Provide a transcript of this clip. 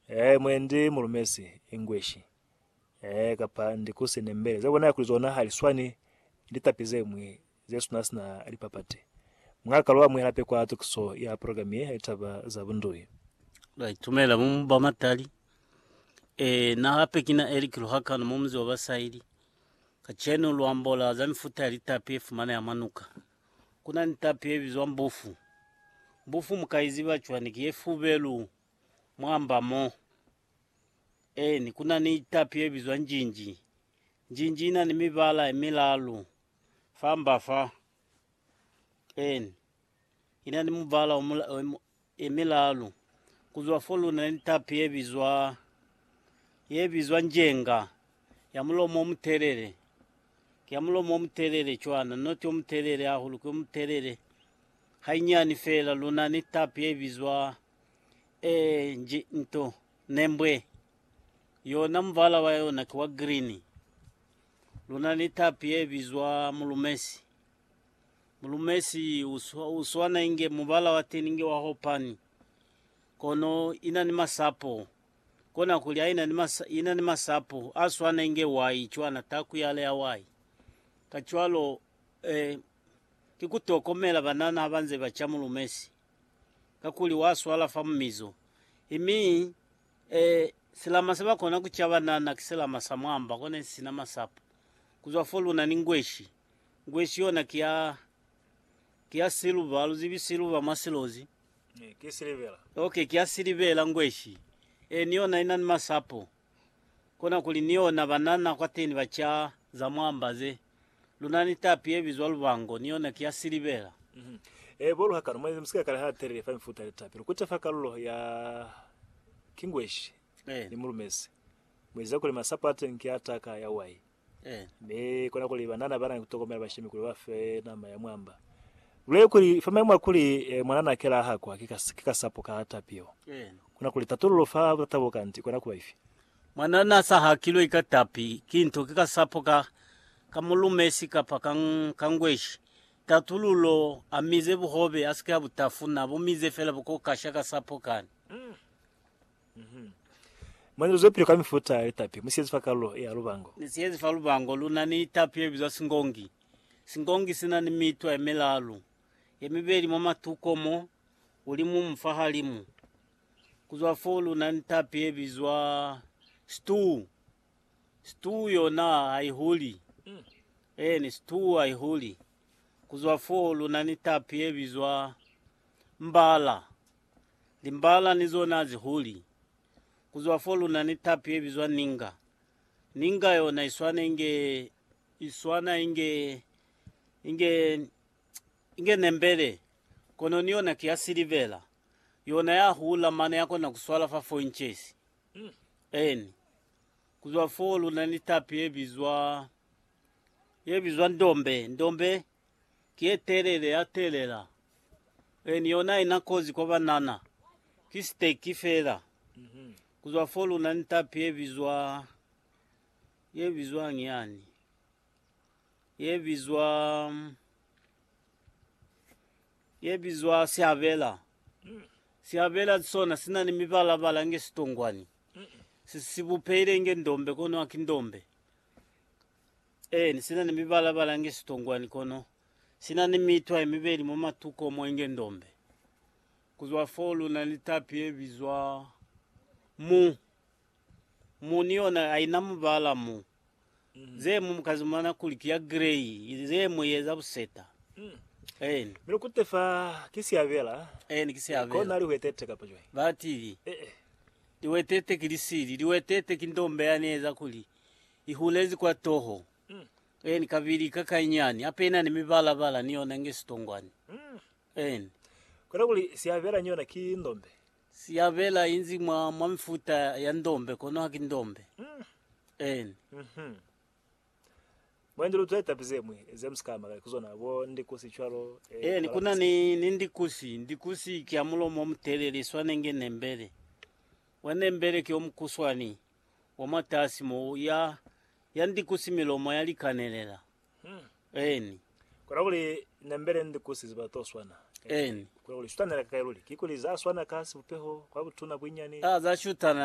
Ee, mwe ndi mu lumezi English. Ee, kapa ndi ku sine mbele. Ze bonala kuli zona hali swani ni litapi ze ñwi ze suna sina lipapati. Mung'a kalo amuhela peko ya tukiso ya program ye ya litaba za bundui. Ba itumela mu mu ba matali. Ee, na hape kina Eric Luhakano mu munzi wa ba Saili. Kacenu lu ambola za mifuta ya litapi ye fumaneha mwa nuka. Ku na ni tapi ye bizwa mbufu. Mbufu mu ka i ziba cwani? Ki ye fubelu. Mwamba mo. Eeni, ku na ni tapi ye bizwa njinji. Njinji ina ni mibala ye milalu. Famba fa. Eeni. Ina ni mubala o mula, o mu- ye milalu. Kuzwa fo luna ni tapi ye bizwa, ye bizwa njenga, ya mulomo o mutelele. Ki ya mulomo o mutelele cwana, noti o mutelele hahulu, ki o mutelele. Hainyani fela luna ni tapi ye bizwa E nji nto, nembwe. Yona muvala wa yona ki wa green. Luna ni tapi ye bizwa mulumesi. Mulumesi u swana inge muvala wa teni nge wa hopani. Kono ina ni masapo. Kona kuli ha ina ni masapo a swana inge wai cwana, taku yale ya wai. Kacwalo, e, ki ku tokomela banana ha ba nze ba ca mulumesi. kakuli wa swala fa mumizo, mi e, silama se ba kona ku ca banana ki silama sa mwamba kona isi sina masapo. Ku zwa fo luna ni ngweshi. Ngweshi yona ki ya, ki ya siluba, lu zibi siluba mwa silozi? Ee, ki silivela. Okay, ki ya silivela ngweshi. Ee, ni yona ina ni masapo. Konakuli ni yona banana kwateni ba ca za mwamba ze. Lunani tapi ye bizwa lubango, ni yona ki ya silibela. E bolu hakano, mwa mu si ka kala ha telele fa mifuta ya tapi. Lu kute fa kalulo ya kingweshi ni mu lumezi. Mu eziza kuli masapo a teñi ki a taka ya wai. Mi kona kuli banana ba na ni ku tokomela bashemi kuli ba fe nama ya mwamba. Lule kuli, fa mayemo a kuli mwanana a kela a hakwa ki kasapo ka tapi yeo, kona kuli tatululo fa butata bo kanti i kona ku ba ifi? Mwana n'a sa hakilwe ka tapi, ki nto ki kasapo ka, ka mulumesi kapa ka, ka ngweshi. Tatululo, A mize buhobe, a si ke a bu tafuna, a bu mize fela bukokasha kasapo kani. Uhum. Mwana lu zwepili ka mifuta ya litapi, mu siyezi fa kalulo ye ya lubango. Ni siyezi fa lubango, lu na ni tapi ye bizwa singongi. Singongi si na ni mitwa ye milalu, ye mibeli mwa matuko mo, ulimu mu fahalimu, Ku zwa foo lu na ni tapi ye bizwa stew. Stew yona ha i huli. Eeni, stew ha i huli. Ku zwa foo lu na ni tapi ye bizwa mbala. Limbala ni zona ha zi huli. Ku zwa foo lu na ni tapi ye bizwa ninga. Ninga yona i swana inge, i swana inge, inge, inge nembele, kono ni yona ki ya silivera. Yona ya hula mane ya kona ku swala fa foinches eni. Ku zwa foo lu na ni tapi ye bizwa, ye bizwa ndombe. Ndombe ki ye telele ya telela eni. Yona ha ina kozi kwa banana, ki siteki fela. Ku zwa foo lu na ni tapi ye bizwa, ye bizwañi yani? Ye bizwa. ye bizwa sihabela. Sihabela sona sina ni mibala-bala inge sitongwani. Si, si bupehile inge ndombe, kono haki ndombe. Eeni, sina ni mibala-bala inge sitongwani, kono sina ni mitwa yemibeli mwa matuko mo inge ndombe. Kuzwa foo luna ni tapi ye bizwa mu. Mu ni yona, haina mubala mu. Mm. Ze mu ka zumana kuli ki ya grey, ze mu eza buseta. Mm. Eni. Mi lukute fa ki siabela. Eni, ki siabela. Ko na lihwetete kapa jwai. Ba tili. Eh, eh. Liwetete ki lisili, liwetete ki ndombe ya neza kuli i hulezi kwa toho. Mm. Eni, kabili ka kainyani, hape ina ni mibala bala ni yona nge sitongwani. Mm. Eni. Kona kuli siabela ni yona ki ndombe. Siyabela inzi mwa mwa mifuta ya ndombe kono haki ndombe. Eni. Mhm. Mwendi lu twa tapi ze mwi ze musika ama kai ku zona, bo ndikusi cwalo, eh, Eni, ku na ni, malanguzi. ni ndikusi. Ndikusi ki ya mulomo o mutelele, i swana inge nembele. Wa nembele ki o mukuswani, wa mwatasi mo, ya, ya ndikusi milomo ya likanelela. Eni. Kona kuli nembele ndi ku siziba to swana. Eni. Kona kuli shutana ka kai luli. Kikuli za swana ka sibupeho, kwa butuna, buinyani. Ka za shutana